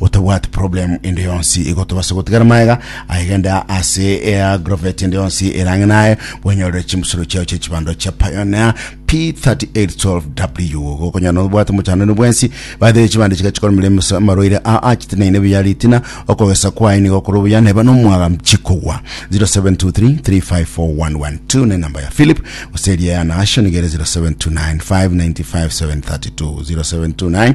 gotabwati problem ende yonsi igo tobase gotigara maega aigenda ase eagrovet ende yonsi erange naye bwenyorere chimusoro chiao chia chibando chia pioneer p3812w gokonyana obwate mochanano bwensi bathere chibande chiga chikoromire emes- amarwaire a achite naine buya ritina okogesa kwaye nigo okore obuya neba nomwaga chikogwa 0723354112 ne namba ya philip gose eria ya nagasho niga ere 0729595732 0729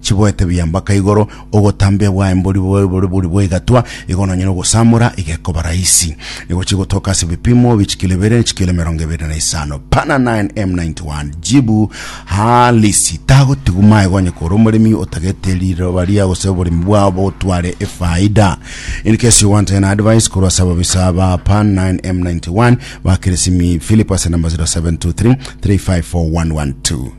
Chiboete buya mpaka igoro, ogotambia bwaye mbori bobe bore bori bw'egatwa, igo nonya nogosamora igekoba raisi. Nigo chigotoka ase ebipimo bi chikilo ibere ne chikilo emerongo ebere na isano. Pana 9 M91. Jibu, Halisi. Tagotigwa maega onye kore omoremi otagete riroba ria gose oboremi bwao bogotware efaida. In case you want an advice korwa ase ababisa ba Pan 9 M91, bakere simi Philip ase namba 0723 354 112.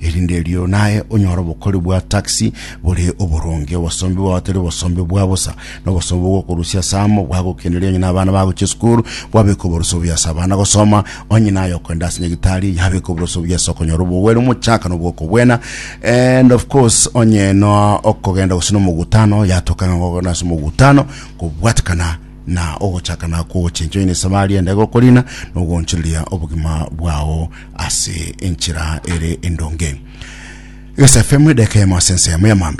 Erinde erio naye onyore obokori bwa taxi bore oboronge, obosombi bwao tari obosombi bwa bosa, na obosombi bw'okorusia ase amo bwagokeneria onye nabana bagochia esukuru, gwabeka oborusia obuya ase abana gosoma, onye naye okogenda ase nyagitari yabeka oborusia obuya ase okonyora obogweri omochaka na obwokobwena, and of course onye noa okogenda gose na omogutano yatoka ng'a ngokogenda ase omogutano kobwatekana na ogochakana kw'ogochencha onye na esabari endabe gokorina na ogoonchoreria obogima bwao. ase enchera ere endonge. Egesaifemu edeka eyemo ase ense yamo ya mambia.